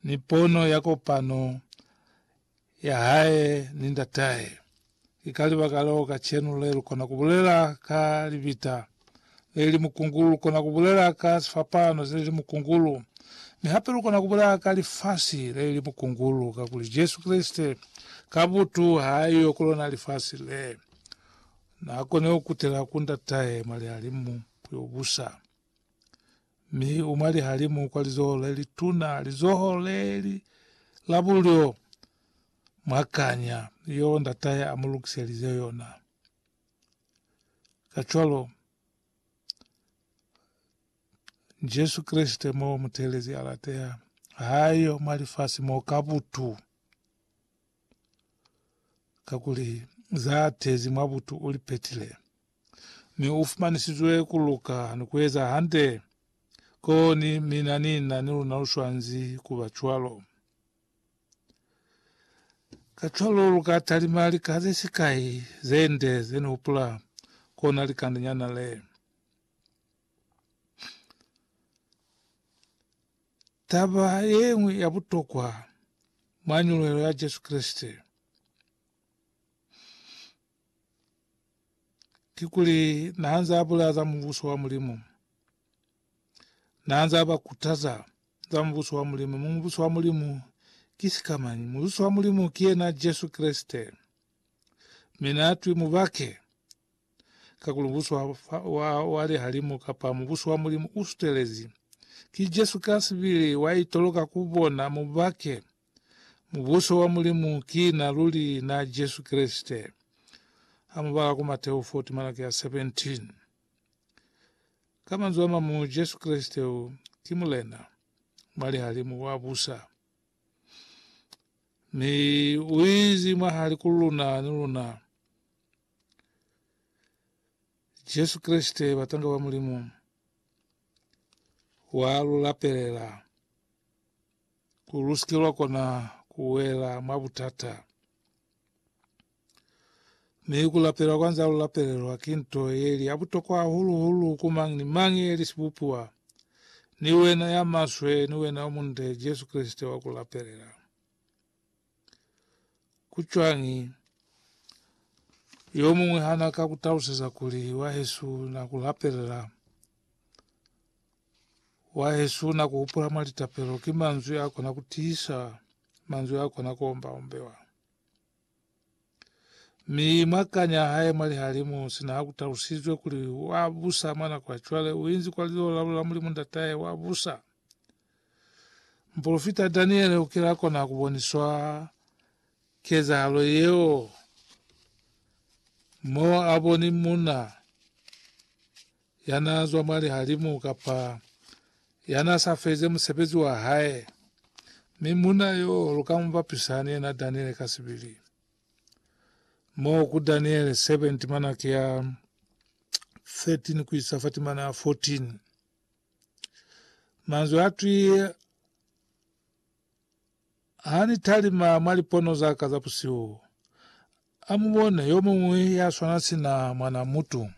ni pono ya kopano ya hae ni Ndatahe. Ki ka libaka leo kacenu le lu kona ku bulela ka libita le li mukungulu, lu kona ku bulela ka sifapano se li mukungulu, mi hape lu kona ku bulela ka lifasi le li mukungulu, kakuli Jesu Kreste ka butu ha a yo ku lona lifasi le. Na kone ku kutela ku Ndatahe mwa lihalimu yo busa. mi u mwa lihalimu kwa lizoho le lituna, lizoho le li la bulyo mwa kanya yeo ndatahe a mu lukiselize yona. Kacwalo, Jesu Kreste mo muteelezi a lateha, ha yo mwa lifasi mo ka butu, kakuli za tezi mwa butu u li petile. mi u fumanisizwe ku luka ni ku eza hande. Koni mina ni na ni luna lu swanzi ku ba cwalo. Kacwalo lu ka talima lika ze sikai ze nde ze ni hupula kona likandenyana le. Taba ye ñwi ya butokwa mwa nyuluhelo ya Jesu Kreste, ki kuli naanze abulaya za mubuso wa Mulimu. Naanze abakutaza za mubuso wa Mulimu. Mi mubuso wa Mulimu ki sikamañi? Mubuso wa Mulimu ki yena Jesu Kreste. Mi naatwi mubake, kakuli mubuso wa, wa, wa lihalimu kapa mubuso wa Mulimu usutelezi. Ki Jesu kasibili waitoloka kubona mubake. Mubuso wa Mulimu ki na luli na Jesu Kreste. Ha mu bala ku Mateo 4 timalaki ya 17. Ka manzwi a mamu, Jesu Kreste u ki Mulena mwa lihalimu wa busa. Mi u izi mwahali ku luna ni luna. Jesu Kreste, batanga ba Mulimu, wa lu lapelela. ku lu si ke lwa kona ku wela mwa butata. Mi ku lapela kwa nza lu lapelelwa ki nto ye li ya butokwa hahulu-hulu ku mañi ni mañi ye li sibupiwa, ni wena ya maswe ni wena yo munde, Jesu Kreste wa ku lapelela. Ku cwañi? Yo muñwi ha na ka ku taluseza kuli, Wahesu na ku lapelela. Wahesu na ku hupula mwa litapelo. Ki manzwi a kona ku tiisa, manzwi a kona ku omba-ombewa. Mi mwa kanya ya hae mwa lihalimu, sina ha ku talusizwe kuli wa busa mwa nako ya cwale, u inzi kwa lilolo la Mulimu Ndatahe, wa busa. Mupolofita Daniele u kile a kona ku boniswa kezahalo yeo, mo a boni munna ya na zwa mwa lihalimu kapa ya na sa feze musebezi wa hae, mi munna yo lu ka mu bapisa ni yena Daniele ka sibili. Mo ku Daniele 7 timana ki ya 13 ku isa fa timana 14. Manzwi atwi ha ni talima mwa lipono za ka za busihu, a mu bone yo muñwi ya swana sina mwana mutu,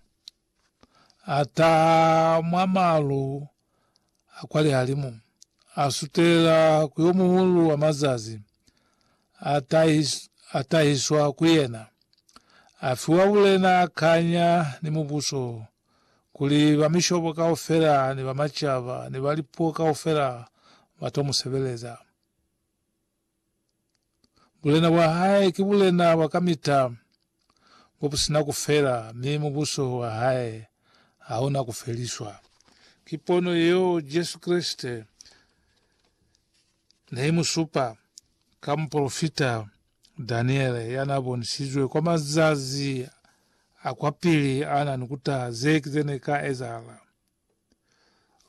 a taha mwa malu a kwa lihalimu, a sutela ku yo muhulu wa mazazi, a, tahis, a tahiswa ku yena, a fiwa bulena, kanya, ni mubuso, kuli bamishobo kaufela ni bamacaba ni ba lipuo kaufela ba to mu sebeleza. Bulena bwa hae ki bulena bwa kamita, bo bu si na ku fela, mi Mubuso wa hae ha u na ku feliswa. Ki pono yeo Jesu Kreste ne i mu supa ka mupolofita Daniele ya n'a bonisizwe kwa mazazi a kwapili a na ni ku taha ze ki ze ne ka ezahala.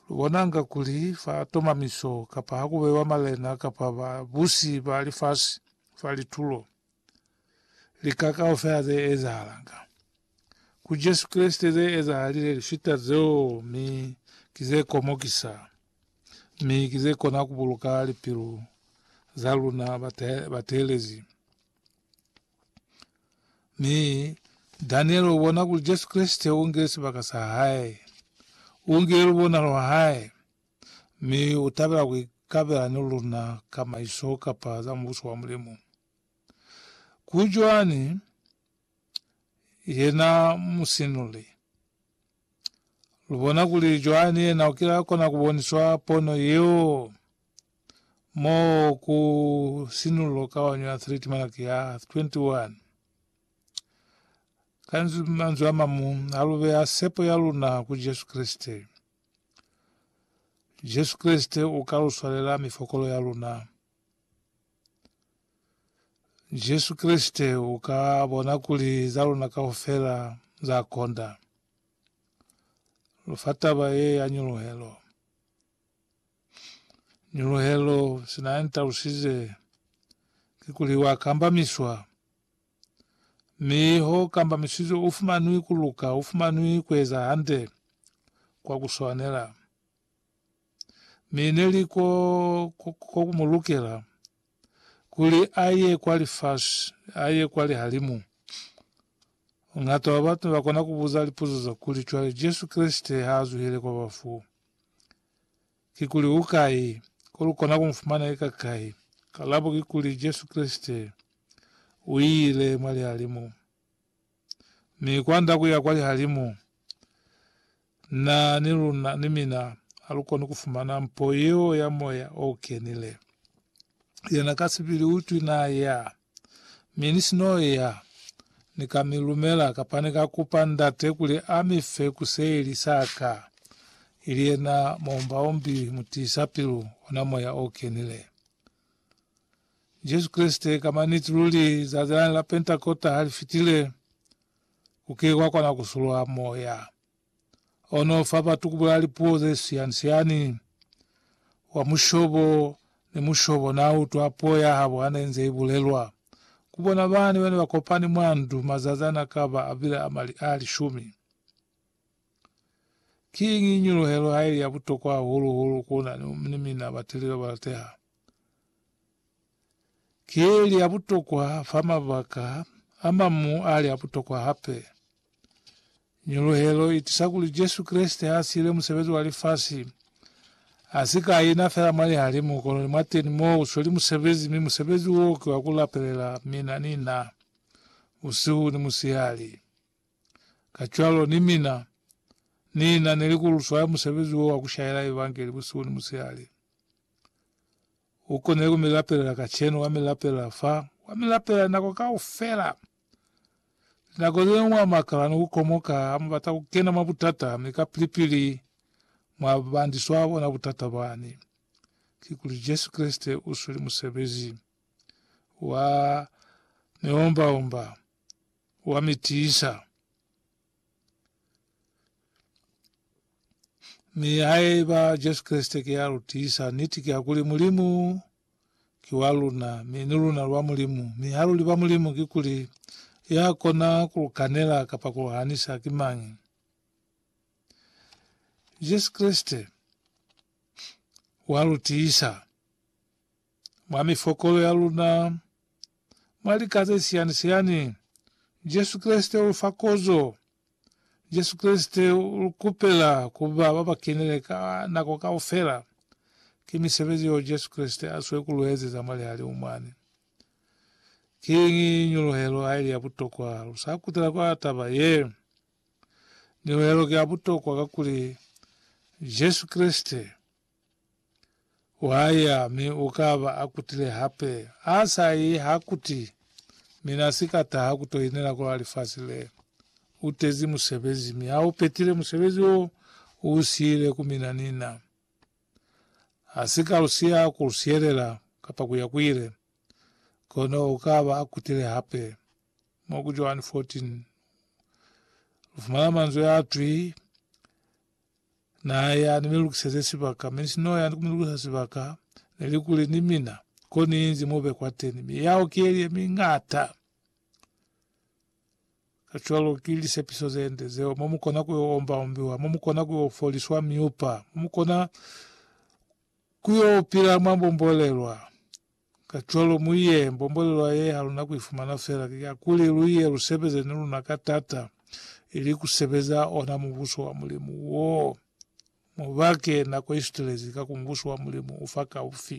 Lu bonanga kuli fa tomamiso kapa ha ku bewa malena kapa babusi ba lifasi fa litulo, lika kaufela ze ezahalanga. Ku Jesu Kreste ze ezahalile lifita zeo mi ki ze komokisa, mi ki ze kona ku buluka lipilu za luna bateelezi. Mi Daniele u bona kuli Jesu Kreste u ngile sibaka sa hae, u ngile lubonalo lwa hae, mi u tabela ku ikabela ni luna ka maiso kapa za Mubuso wa Mulimu. Ku Joani, yena musinuli. Lubona kuli Joani yena ukila kona kuboniswa pono yeo mo ku sinulo kaonyo ya 3 timalaki ya 21. Ka manzwi a mamu, halubeya sepo ya luna ku Jesu Kreste. Jesu Kreste uka luswalela mifokolo ya luna. Jesu Kreste u ka bona kuli za luna kaufela za konda. Lu fa taba ye ya nyuluhelo. Nyuluhelo sina ya ntalusize kikuli wa kambamiswa, mi ho kambamisizwe u fumanwi ku luka, u fumanwi ku eza hande kwa ku swanela. mi ne li ko ku mu lukela kuli a ye kwa lifasi, a ye kwa lihalimu. Ngata wa batu ba kona ku buza lipuzo za kuli, Cwale Jesu Kreste ha a zuhile kwa bafu, kikuli u kai? Ko lu kona ku mu fumana ika kai? Kalabo kikuli, Jesu Kreste u ile mwa lihalimu. mi kwanda kuya kwa lihalimu, na ni luna, ni mina, halukoni kufumana mpo yeo ya Moya o Kenile. Yena ka sibili utwi na ya, mi ni si no ya, Ni ka mi lumela, kapa Ni ka kupa Ndate kuli a mi fe kuseli sa ka, ili yena Muombaombi Mutiisapilu, ona Moya o Kenile. Jesu Kreste ka maniti luli zazi lani la Pentakota ha li fitile, ku ke kwa kona ku sulwa Moya o no fa batu ku bulela lipuo ze siani-siani. Wa mushobo ni mushobo n'a utwa puo ya habo ha ne nze i bulelwa ku bona bani ba ne ba kopani mwa ndu mazazi a n'a ka ba a bile a lishumi. Kiñi nyuluhelo haili ya butokwa hahulu-hulu ku na ni mina batili ba balateha? Kiili ya butokwa fa mabaka a mamu ali a butokwa hape. Nyuluhelo itisa kuli Jesu Kreste ha siile musebezi wa lifasi, a si ka ina fela mwa lihalimu, kono ni mwateni mo u sweli musebezi, mi musebezi wo ki wa ku lapelela mina ni na, busihu ni musihali. Kacwalo ni mina Ni na ni li ku lu swaya musebezi wo wa ku shaela Evangeli busihu ni musihali. U konile ku mi lapelela kacenu, wa mi lapelela fa, wa mi lapelela nako kaufela. Linako ze ñwi wa makala ni ku komoka, a mubata ku kena mwa butata, mi kapili-pili mwa bandiswa bona butata bani. Kikuli Jesu Kreste u sweli musebezi wa miomba-omba. wa mi tiisa. Mi haiba Jesu Kreste ki ya lu tiisa, niti ki ya kuli Mulimu ki wa luna, mi ni luna lu ba Mulimu. Mi ha lu li ba Mulimu, kikuli ya kona ku lu kanela kapa ku lu hanisa ki mañi? Jesu Kreste wa lu tiisa. Mwa mifokolo ya luna, mwa lika ze siyani-siyani, Jesu Kreste u lu fa kozo. Jesu Kreste u lu kupela ku ba ba ba kenile ka nako kaufela. Ki misebezi yeo Jesu Kreste a zwe ku lu ezeza mwa lihalimu mwani. Ki ñuluhelo haili ya butokwa! Lu sa kutela kwa taba ye. Ñuluhelo ki ya butokwa kakuli Jesu Kreste. Wa ya, mi u ka ba a kutile hape. Ha sa yi, ha kuti, Mi na si ka taha ku to inela kwa lifasi le. U tezi musebezi, mi ha u petile musebezi wo u siile ku mina ni na. Ha si ka lu siya ku lu sielela, kapa ku ya ku ile. Kono u ka ba a kutile hape. Mo ku Joani 14, lu fumana manzwi a twi, Naya ni mi lukiseze sibaka, mi sinoya ni ku mi lukisa sibaka, neli kuli ni mina, ko ni inzi mo be kwateni. Miyaho ki yeli ye mi ngata. Kacwalo ki lisepiso zende zeo, mo mukona ku yo omba ombiwa, mo mukona ku yo foliswa miupa, mo mukona ku yo pila mwa mbombolelwa. Kacwalo mu ye, mbomboleloa ye ha luna ku i fumana fela ki ya kuli lu ye lu sebeze ni luna ka tata, ili ku sebeza ona Mubuso wa Mulimu wo. Mu bake nako i sutelezi, ka ku Mubuso wa Mulimu u fa kaufi.